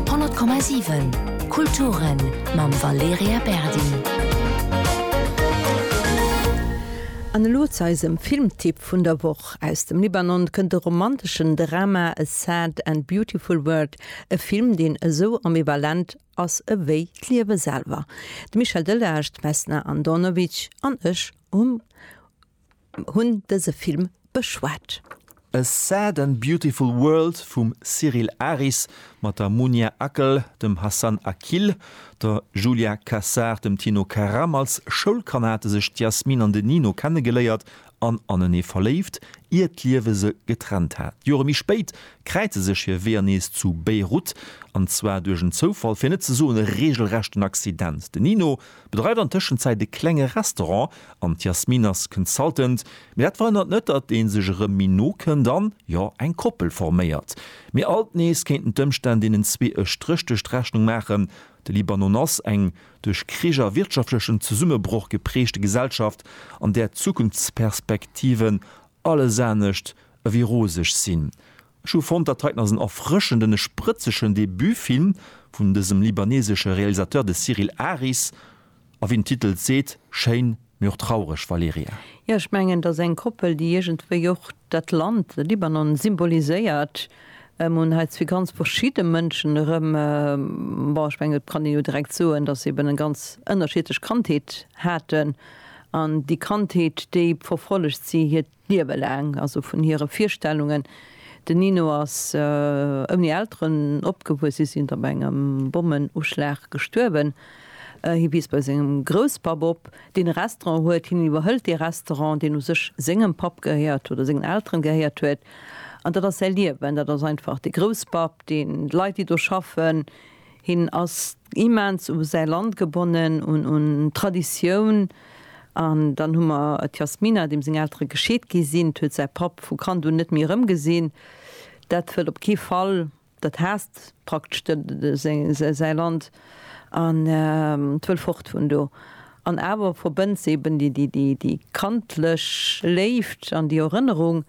100,7 Kulturen mam Valerija Berdi. An elo zu eisem Filmtipp vun der Woch. Aus dem Libanon kënnt de romanteschen Drama A Sad and Beautiful World, e Film deen esou ambivalent ass ewéi d'Liewe selwer. De Michel Delage, d'Vesna Andonovic an ech um. Hunn dëse Film beschwat. A Sad and Beautiful World vum Cyril Aris mat der Munia Akel, dem Hassan Akil, der Julia Cassar, dem Tino Karam. Als Schoulkanner hate sech d'Yasmin an den Nino kennegeléiert an anenee verléift, ier d'Liewe se getrennt hat. Jore méi spéit kräize sech hir Weeër nees zu Beirut, an zwar duerch en Zoufall, fir net ze soen e reegelrechten Accident. Den Nino Bedreift an Tëschenzäit e klenge Restaurant an d'Yasmine ass Consultant. Mee dat verhënnert net, datt ee sech erëm méi no kënnt an, jo, eng Koppel forméiert. Mee alt nees kéinten d'Ëmstänn deenen zwee e Stréch duerch d'Rechnung maachen. De Libanon ass eng duerch Krich a wirtschaftlechen Zesummebroch geprägte Gesellschaft, an där d'Zukunftsperspektiven alles anescht ewéi roseg sinn. Ech hu fonnt, dat heiten ass en erfrëschenden e sprëtzegen Debutfilm vun dësem libanesesche Realisateur, de Cyril Aris, a wéi den Titel et seet, schéin, mee och traureg, Valerija. Jo, ech mengen, et ass eng Koppel, déi iergendwéi och dat Land Libanon symboliséiert. Mir hunn hei zwee ganz verschidde Mënschen erëm, bon, ech mengen, et kann een jo direkt soen, datt se eben eng ganz ënnerschiedlech Kandheet haten an déi Kandheet, déi verfollegt si, hiert. Liewe laang, also vun hire Virstellungen. Den Nino ass ouni Elteren opgewuess, si sinn op engem Bommenuschlag gestuerwen. Hie wiisst bei sengem Grousspapp op, deen e Restaurant huet. Hien iwwerhëlt dee Restaurant, deen u sech sengem Papp gehéiert oder sengen Elteren gehéiert huet. An dat ass säi Liewen, dat ass einfach de Grousspapp, deen d'Leit, déi do schaffen, Hien ass immens u säi Land gebonnen, un d'Traditioun. An dann hu mer d'Yasmina, deem seng Eltere gescheet gi sinn. D'huet säi Papp vu Kand un net méi erëmgesinn. Dat wëll op kee Fall. Dat haasst praktesch säi Land an d'wëll fort vun do. An awer verbënnt se eben déi kandlech Léift an déi Erënnerung.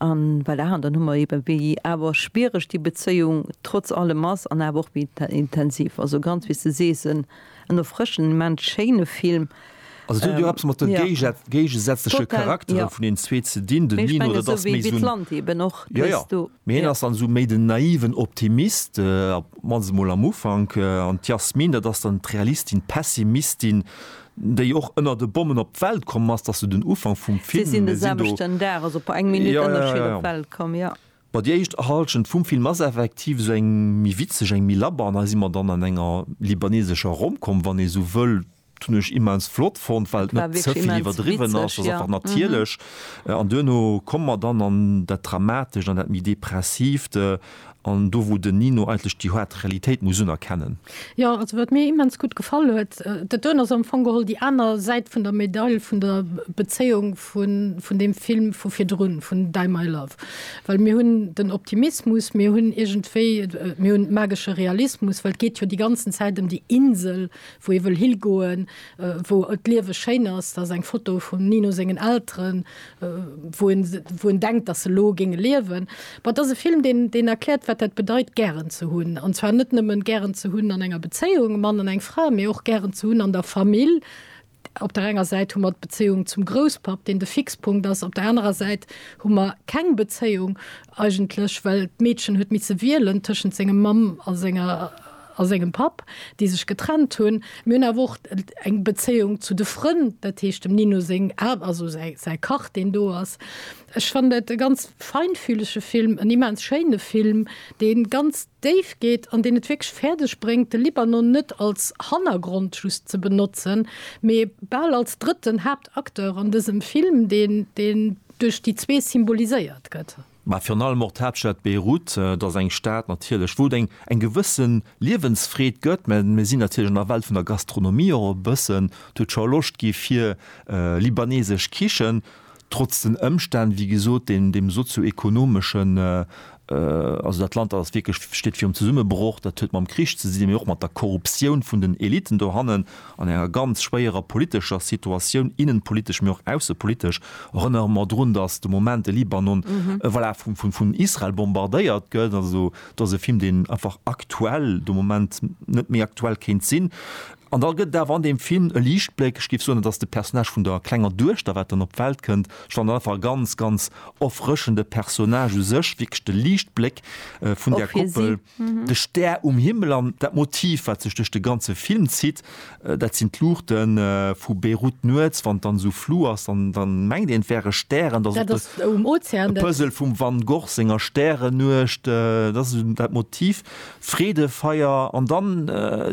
An voilà, an dann hu mer eben, wéi awer schwiereg déi Bezéiung trotz allem ass an awer och wéi intensiv. Also ganz, wéi s de sees, en erfrëschend, immens schéine Film. Also et huet jo eppes mat de géigesätzleche Charaktere vun deenen zwee ze dinn. Den Nino, dat ass méi esou en, jo, jo, mee hien ass dann esou méi den naiven Optimist. Mä se mol am Ufank. An d'Yasmine, dat ass dann d'Realistin, d'Pessimistin, déi och ënnert e Bommen op d'Welt komm ass. Dat ass sou den Ufank vum Film. Si sinn e Samschden Dag, also op eng Minutt Ënnerscheed, op d'Welt komm, jo. Bon, déi éischt Hallschent vum Film ass effektiv sou eng méi witzeg, eng méi labber. An hei si mer dann an enger libanesescher Rom-Com, wann ee sou wëll. Hun ech immens flott fonnt well et net zevill iwwerdriwwen ass, ass einfach natierlech an duerno komme mer dann an dat dramatescht, an dat méi depressiivt an do wou den Nino eigentlech déi haart Realitéit muss unerkennen. Jo, also wat mir immens gutt gefall huet, dat doen ass am Fong geholl déi aner Säit vun der Medail vun der Bezéiung vun deem Film vu virdrun, vun Die My Love. Well mir hunn den Optimismus, mir hunn iergendwéi, mir hunn magesche Realismus, well et geet jo déi ganzen Zäit ëm déi Insel, wou ee wëll higoen, wou d'Liewe schéin ass, dat ass eng Foto vum Nino sengen Elteren, wou en, wou en denkt, datt se elo géinge liewen. Bon, et ass e Film, deen, deen erkläert, wat dat bedeit gären ze hunn, an zwar net nëmmen gären ze hunn an enger Bezéiung, e Mann an eng Fra, mee och gären ze hunn an der Famill. Op der enger Säit hu mer d'Bezéiung zum Grousspapp, deen de Fixpunkt ass, op der anerer Säit hu mer keng Bezéiung eigentlech, well d'Meedchen huet misse wielen tëschent senger Mamm a senger, a sengem Papp, déi sech getrennt hunn. Mir hunn awer och eng Bezéiung zu de Frënn, dat heescht dem Nino seng Ar-, also säi, säi Kach, deen do ass. Ech fannen dat e ganz feinfühlege Film, en immens schéine Film, dee ganz déif geet an deen et wierklech fäerdeg bréngt, de Libanon net als Hannergrond just ze benotzen, mee bal als drëtten Haaptacteur an dësem Film, deen, deen duerch déi zwee symboliséiert gëtt. Mä virun allem och d'Haaptstad Beirut, et ass eng Stad natierlech, wou et eng eng gewësse Liewensfreed gëtt, mä mir sinn natierlech an der Welt vun der Gastronomie och e bëssen. Et huet scho Loscht gi fir libanesesch Kichen, trotz den Ëmstänn, wéi gesot, deem deem sozio-ekonomeschen, also dat Land, dat ass wierklech, steet virum Zesummebroch, dat huet mam Krich ze dinn, mä och mat der Korruptioun vun den Eliten dohannen. An enger ganz schwéierer politescher Situatioun, innenpolitesch, mee och aussepolitesch, erënnere mer drun, datt de Moment de Libanon, voilà, vun Israel bombardéiert gëtt. Also, do ass e Film, deen einfach aktuell, de Moment net méi aktuell kéint sinn. An da gëtt et awer an deem Film e Liichtbléck, ech géif soen, et ass de Personnage vun der klenger Duechter, wat dann op d'Welt kënnt. Ech fannen dat einfach e ganz, ganz erfrëschende Personnage u sech, wierklech de Liichtbléck vun där Koppel. De Stär um Himmel an dat Motiv, wat sech duerch de ganze Film zitt, dat sinn d'Luuchte vu Beirut nuets, wann et dann esou flu ass, dann, dann mengt een, et wäre Stären. Dat ass och de Puzzle vum Van Gogh senger Stärennuecht. Dat ass esou dat Motiv, d'Freedefeier. An da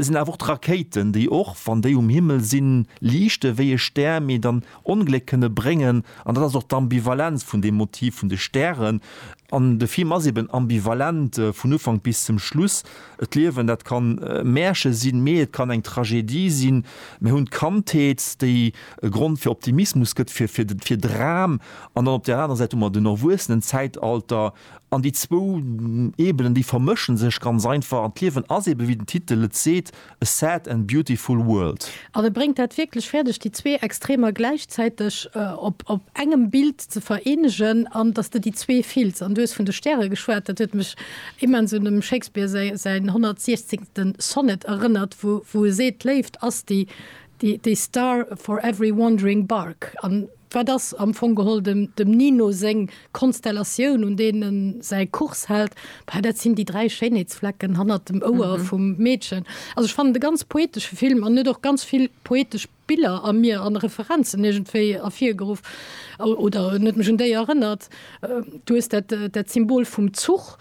sinn awer och d'Rakéiten, déi och, wann déi um Himmel sinn, liichte wéi e Stär, mee dann Ongléck kënne bréngen, an dat ass och d'Ambivalenz vun deem Motiv vun de Stären. An de Film ass eben ambivalent vun Ufank bis zum Schluss. D'Liewen, dat kann e Märche sinn, mee et kann eng Tragedie sinn. Mir hunn d'Kandheet, déi e Grond fir Optimismus gëtt, fir, fir, fir Dram, an dann op där anerer Säit hu mer den Erwuessenenzäitalter. An déi zwou Ebenen, déi vermësche sech ganz einfach. An d'Liewen ass eben, wéi den Titel et seet, A sad and beautiful world. An e bréngt dat wierklech fäerdeg, déi zwee Extremer gläichzäiteg op engem Bild ze vereenegen an datt s de déi zwee fills. An du hues vun de Stäre geschwat, dat huet mech immens un dem Shakespeare säin 116. Sonnet erënnert, wou e seet, d'Léift ass déi star for every wandering bark. Wat ass am Fong geholl dem Nino seng Konstellatioun, un deen en säi Kurs hält? Bah, dat sinn déi dräi Schéinheetsflecken hannert dem Ouer vum Meedchen. Also ech fannen et e ganz poetesche Film an huet och ganz vill poetesch Biller a mir an Referenzen iergendwéi ervirgeruff oder huet mech un déi erënnert. Du hues dat Symbol vum Zuch.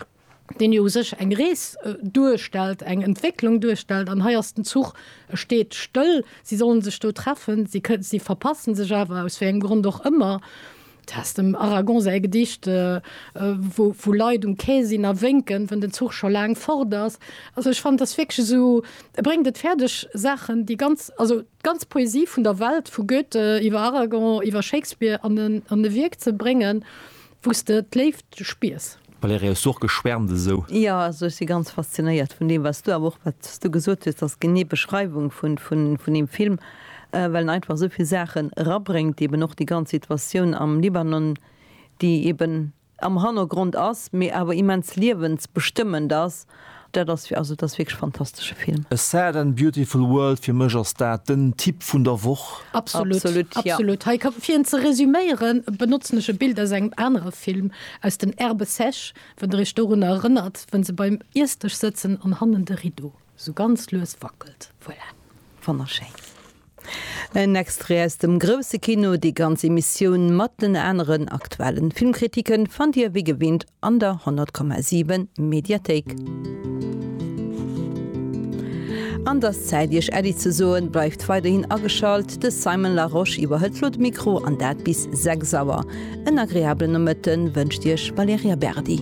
deen jo u sech eng Rees duerstellt, eng Entwécklung duerstellt, an hei ass den Zuch, e steet stëll, si sollen sech do treffen, si kënnen, si verpassen sech awer, aus wéi engem Grond och ëmmer. Du has dem Aragon säi Gedicht, wou Leit um Quai sinn a wénken, wënn den Zuch scho laang fort ass. Also ech fannen, et ass wierklech esou, e bréngt et fäerdeg Saachen, déi ganz, also. D'ganz Poesie vun der Welt, vu Goethe iwwer Aragon, iwwer Shakespeare, an e Wierk ze bréngen, wou s de d'Léift spiers. Valérie, Hues du och geschwärmt esou? Jo, also ech si ganz faszinéiert vun deem, wat s du, awer och wat s du gesot hues, dass genee Beschreiwung vun deem Film, well en einfach esou vill Saachen erabréngt, eben och déi ganz Situatioun am Libanon, déi eben, am Hannergrond ass, mee awer immens liewensbestëmmend ass. Dat ass, also dat ass wierklech e fantastesche Film. A Sad and Beautiful World, fir mech ass dat den Tipp vun der Woch. Absolut, absolut. Hei ka, fir en ze resuméieren, benotzen ech e Bild aus engem anere Film, aus den Herbes sèches, wann der iech dorunner erënnert, wou se beim Iessdësch sëtzen an hannen de Rideau. Sou ganz lues wackelt. Voilà, fann ech schéin. En Extrait aus dem Grousse Kino. Déi ganz Emissioun mat den aneren aktuellen Filmkritiken fannt dir wéi gewinnt an der 100,7 Mediathéik. An dass Zäit iech Äddi ze soen, bleift weiderhin ageschalt. De Simon Larosche iwwerhëlt lo de Mikro an dat bis 6 Auer. En agreablen Nomëtten wënscht iech Valerija Berdi.